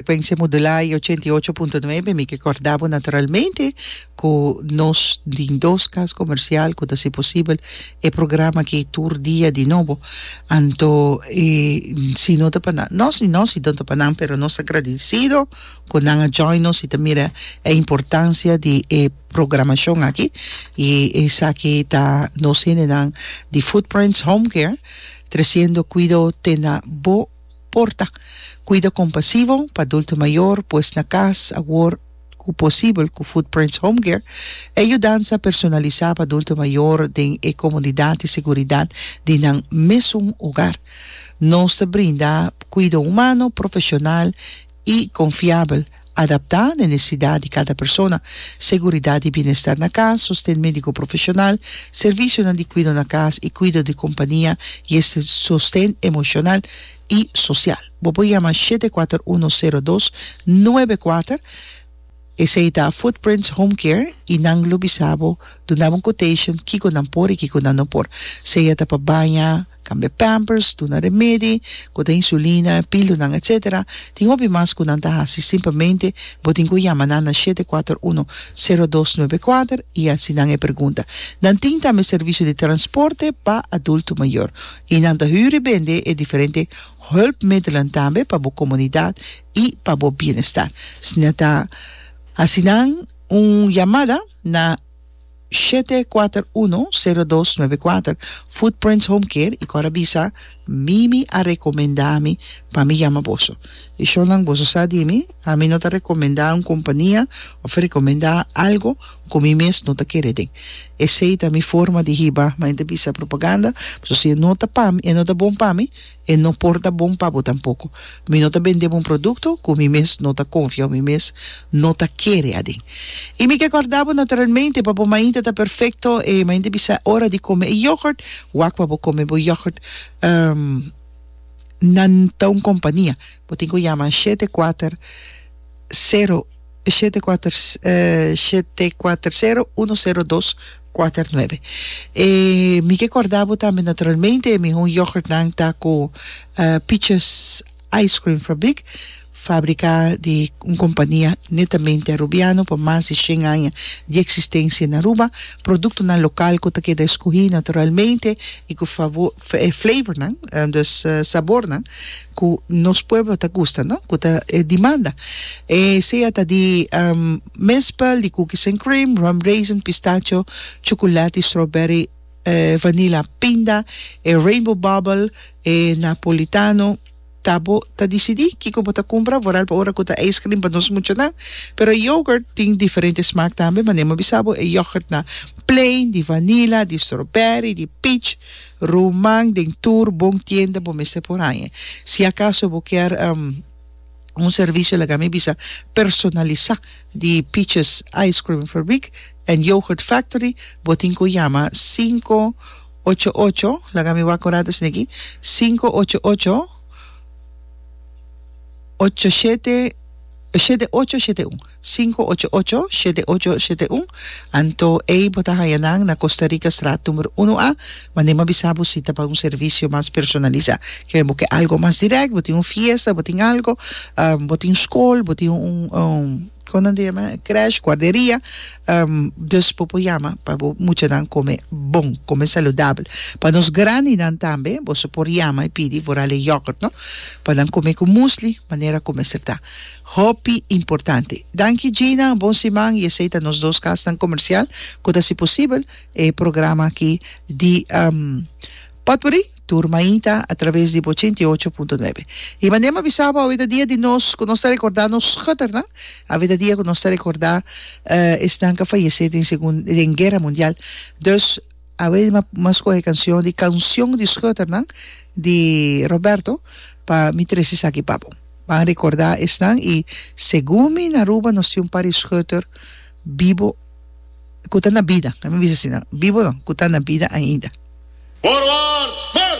Frecuencia modulada y ochenta y ocho punto nuebe. Mi ke korda bo naturalmente ku nos tin dos kas komersial ku ta hasi posibel e programa aki tur dia di nobo. Anto si no ta pa nan, no si no si no ta pa nan pero nos ta agradesido ku nan a join nos y ta mira e importancia di e programacion aki y esaki ta nos hendenan di Footprints Homecare. Treciendo cuido te na bo porta. Cuida compasivo pa adulto mayor pues na cas awor cu posibel cu Footprints Home Care e yudansa personalisa pa adulto mayor den e comodidad y seguridad di nan mesun hogar. Nos ta brinda cuido humano, profesional. i konfiabel, adaptá na e nesesidat di kada persona, seguridat di bienestar na kas, sosten médiko profeshonal, servisionan di kuido na kas i kuido di kompania i e sosten emoshonal i sosial. Bo por yama shete kuater uno sero dos nuebe kuater. Esei ta Footprints Home Care i nan lo bisa bo, duna bo un quotation kiko nan por i kiko nan no por, sea ta pa baña, Cambia pampers, duna remedi, cu ta insulina, pilunan, etc. Tin hopi mas cu nan ta haci simplemente bo tin cu yama nan na shete kuater uno, sero dos nuebe kuater y haci nan e pergunta. Nan tin tambe servicio di transporte pa adulto mayor y nan ta hüri bende e diferente hulpmiddelen tambe pa bo comunidad y pa bo bienestar. Sna ta haci nan un yamada na. Shete kuater uno, sero dos nuebe kuater, Footprints Home Care i kor a bisa, Mimi a rekomendá mi pa mi yama boso. I shonnan boso sa di mi, ami no ta rekomendá un kompania òf rekomendá algu ku mi mes no ta kere den. Esei ta mi forma di hiba, manera ta bisa propaganda, pasobra si e no ta pa mi, e no ta bon pa mi, E no por ta bon pa bo tampoko. Mi no ta bende bo un produkto ku mi mes no ta konfia o mi mes no ta kere aden. I mi ke kòrda bo naturalmente pa bo mainta ta perfekto, e mainta bisa e ora di kome e yògùrt, wak pa bo kome bo yògùrt na ta un kompania. Bo tin ku yama an shete kuater sero. shete kuater shete kuater sero uno sero dos kuater nuebe e mi ke kòrda bo tambe naturalmente e mihó yògùrtnan ta ku Peaches Ice Cream Fabriek fabriká di un kompania netamente arubiano pa mas di shen aña di eksistensia na Aruba produktonan lokal ku ta keda eskohí naturalmente i ku flavornan dus sabornan ku nos pueblo ta gusta no ku ta e dimanda e sea ta di mespel di cookies and cream rum raisin pistacho chukulati strawberry vanila pinda e rainbow bubble e napolitano ta bo ta disidi kiko bo ta kumpra vooral pa ora ku ta ice cream pa nos muchanan pero yoghurt tin diferente smaak tambe manera mi a bisa bo e yoghurt na plain di vanila di strawberry di peach Roman den tur bon tienda bo mester por haña. Si acaso bo kier un servicio laga mi bisa personalisa di Peaches Ice Cream Fabriek and Yoghurt Factory bo tin cu yama sinku ocho ocho, laga mi wak orada esnan aki, sinku ocho ocho, ocho shete, shete ocho shete un. Sinku ocho ocho, shete ocho, shete un. Anto ei bo ta haña nan na Costa Rica straat numero uno A. Mande ma bisa bo si ta pa un servisio mas personalisa. Ke bo ke algo mas direkt, bo tin un fiesta, bo tin algo, bo tin skol, bo tin un kon nan ta yama krèsh, guarderia, dus bo por yama pa bo muchanan kome bon, kome saludabel. Pa nos grandinan tambe boso por yama i pidi vorale yogurt no, pa nan kome ku musli, manera ku mester ta. Hopi importante. Danki Gina, bon siman y esey ta nos dos kasnan comercial cu ta haci posibel e programa aki di Potpourri tur mainta a traves di bo ochenta y ocho punto nuebe. Y mane m'ha bisa bo awe ta dia di nos cu nos ta recorda nos schuternan, awe ta dia cu nos ta recorda esnan cu a fayece den segun den guerra mundial dus awe m'ha scoge e cancion di Cancion di schuternan di Roberto pa mi trece esaki pa bo. Ban rikordá esnan i segun mi na Aruba nos tin un par di schutter bibo ku ta na bida, laat mi bisa asina, bibo no, ku ta na bida ainda. Forward, spel!